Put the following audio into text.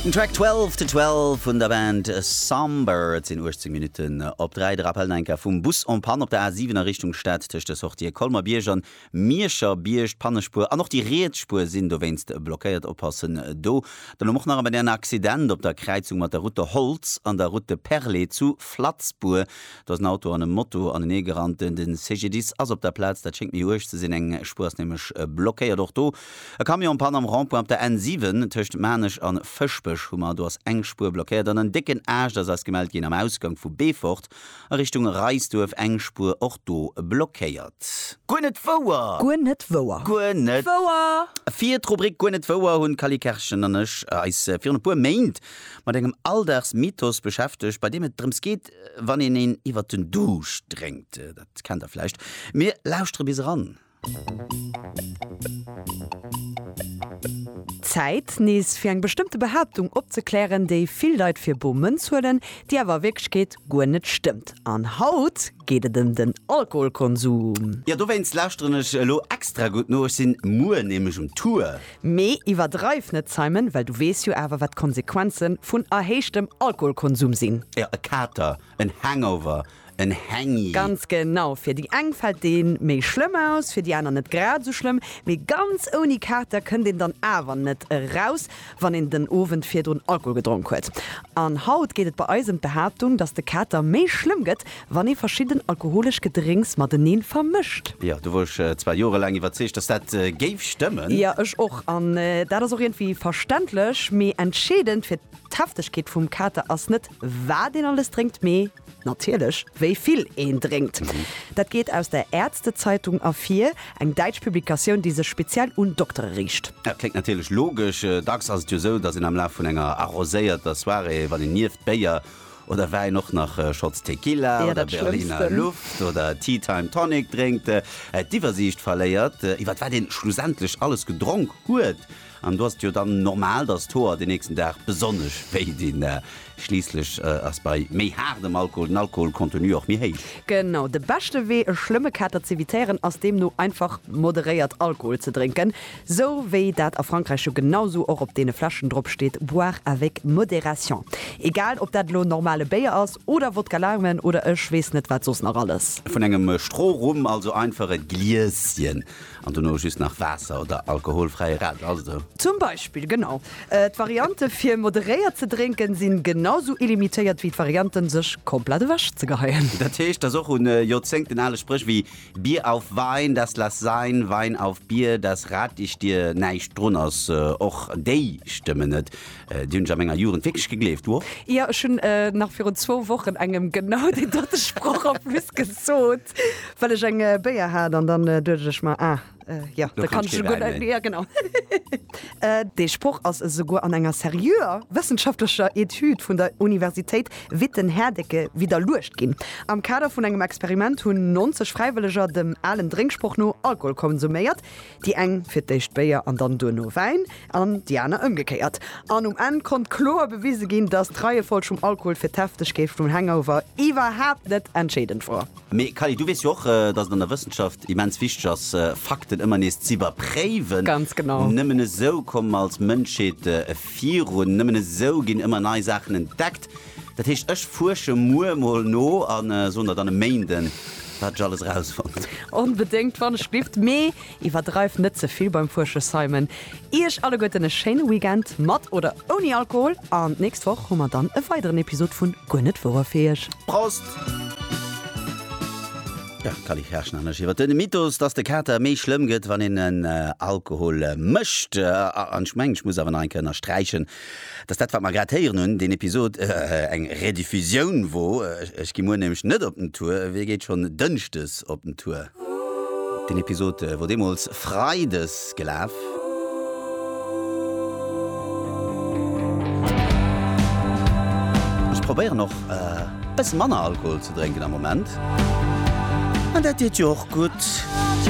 Den Track Twelve to Twelve vun der Band Somber. Et sinn 18 Minutten op 3. De Rappel no enker vum Bus en Panne op der A7 a Richtung Stad. Tëscht de Sortië Colmer-Bierg an Mierscher-Bierg. D'Pannespuer an och déi riets Spuer sinn dowéinst blockéiert. Oppassen do. Dann elo Moch nach ëmmer en Accident op der Kräizung mat der Route de Holtz an der Route de Perlé zu Flatzbour. Do ass en Auto an e Moto aneneegerannt. De CGDIS ass op der Plaz. Dat schéngt méi uerg ze sinn. Eng Spuer ass nämlech blockéiert och do. E Camion Panne am Rond-point op der N 7, tëscht Maarnech an Fëschbech hu mer, do ass eng Spuer blockéiert an en décken Aascht ass eis gemellt ginn am Ausgank vu Beefort a Richtung Reisduerf, eng Spuer och do blockéiert. Guer net wouer! Guer net wouer! Guer net wouer! Fir d'Rubrik Guer net wouer hunn d'Cally Kerschen an ech eis virun e puer Méint mat engem Alldagsmythos beschäftegt, bei deem et drëms geet, wann een een iwwert den Duuscht drénkt. Dat kennt der vläicht. Mir lauschtere bis eran. Zäit, nees fir eng bestëmmte Behaaptung opzeklären, déi vill Leit fir bor Mënz huelen, déi awer a Wierklechkeet guer net stëmmt. An haut geet et ëm den Alkoholkonsum. Jo, dowéinst lauschteren ech elo extra gutt no, ech sinn muer nämlech um Tour. Mee iwwerdreiw net, Simon, well du weess jo awer, wat d'Konsequenzen vun erhéichtem Alkoholkonsum sinn. Jo, e Kater, en Hangover, en Hängi. Ganz genau, fir déi eng fält dee méi schlëmm aus, fir déi aner net grad esou schlëmm, mee ganz ouni Kater kënnt een dann awer net eraus, wann een den Owend virdrun Alkohol gedronk huet. An haut geet et bei eis ëm d'Behaaptung, datt de Kater méi schlëmm gëtt, wann ee verschidden alkoholesch Gedrénks mateneen vermëscht. Jo, do wor ech zwar jorelaang iwwerzeegt, datt dat géif stëmmen. Jo, ech och. An dat ass och iergendwéi verständlech. Mee entscheedend fir d'Heftegkeet vum Kater ass net, wat een alles drénkt, mee. Natierlech, wéi vill een drénkt. Dat geet aus der Ärztezeitung ervir, eng däitsch Publikatioun, déi sech speziell un Doktere riicht. Dat kléngt natierlech logesch. Dacks ass et jo sou, datt een am Laf vun enger arroséierter Soirée, wann een nieft Béier oder Wäin och nach Shots Tequila oder Berliner Luft oder Tea Time Tonic drénkt, d'Iwwersiicht verléiert, iwwer wat een schlussendlech alles gedronk huet. An do ass et jo dann normal, dass d'Hoer den nächsten Dag besonnesch wéi dinn. Schliisslech ass bei méi haardem Alkohol den Alkoholcontenu och méi héich. Genau. De beschte Wee e schlëmme Kater z'evitéieren ass deemno einfach moderéiert Alkohol ze drénken, sou wéi dat a Frankräich jo genau sou och op deene Fläschen drop steet, boire avec modération. Egal ob dat elo normale Béier ass oder Wodka Lime oder ech weess net wat soss nach alles. Vun engem Strohrum, also einfach e Glieschen. An dono just nach Waasser oder alkoholfräie Radler, ass et esou? Zum Beispill, genau. D'Variante fir moderéiert ze drénken sinn genau sou illimitéiert wéi d'Varianten sech komplett ewech ze geheien. Dat heescht, dass och un Joerzéngten ale Spréch wéi Bier auf Wein, das lass sein, Wein auf Bier, das rat ich dir näischt drun ass. Och déi stëmmen net. Déi hunn ech a menger Jugend wierklech gegleeft, wow! Jo, ech hunn nach virun zwou Wochen engem genau deen dote Sproch en plus gesot, well ech eng Béier hat an dann duecht ech mer, ah jo, da kann ech jo guer net méi. Jo, genau. Dee Sproch ass esouguer an enger seriöer wëssenschaftlecher Etüd vun der Universitéit Witten-Herdecke widderluecht ginn. Am Kader vun engem Experiment hunn 90 Fräiwëlleger dem alen Drénksproch no Alkohol konsuméiert. Déi eng fir d'éischt Béier an dann duerno Wäin an déi aner ëmgekéiert. An um Enn konnt kloer bewise ginn, dass d'Reiefolg vum Alkohol fir d'Heftegkeet vum Hangover iwwerhaapt net entscheedend wor. Mee Kally, du weess jo och, dass et an der Wëssenschaft immens wichteg ass, Fakten ëmmer nees z'iwwerpréiwen. Ganz genau. Nëmmen esou komme mer als Mënschheet virun. Nëmmen esou ginn ëmmer nei Saachen entdeckt. Dat heescht, ech fuersche muer emol no a soen der dann e Méinden, wat ech alles erausfonnt. Onbedéngt, wann ech dierft. Mee iwwerdreift net ze vill beim Fuersche, Simon. Iech alleguerten e schéine Weekend, mat oder ouni Alkohol, an d'nächst Woch hu mer dann e weideren Episod vu Guer net wouer fir iech. Prost! Jo, d'Cally Kerschen an ech iwwer de Mythos, dass de Kater méi schlëmm gëtt, wann een en Alkohol mécht. An ech mengen, ech muss awer nach eng Kéier ënnersträichen, Dass dat, wat mer grad héieren hunn, deen Episod eng Rediffusioun wor. Ech gi muer nämlech net op den Tour. Wee geet schonn dënschdes op den Tour? Deen Episod wor deemools freides gelaf. Ech probéieren och e bësse manner Alkohol ze drénken am Moment. An dat deet jo och gutt.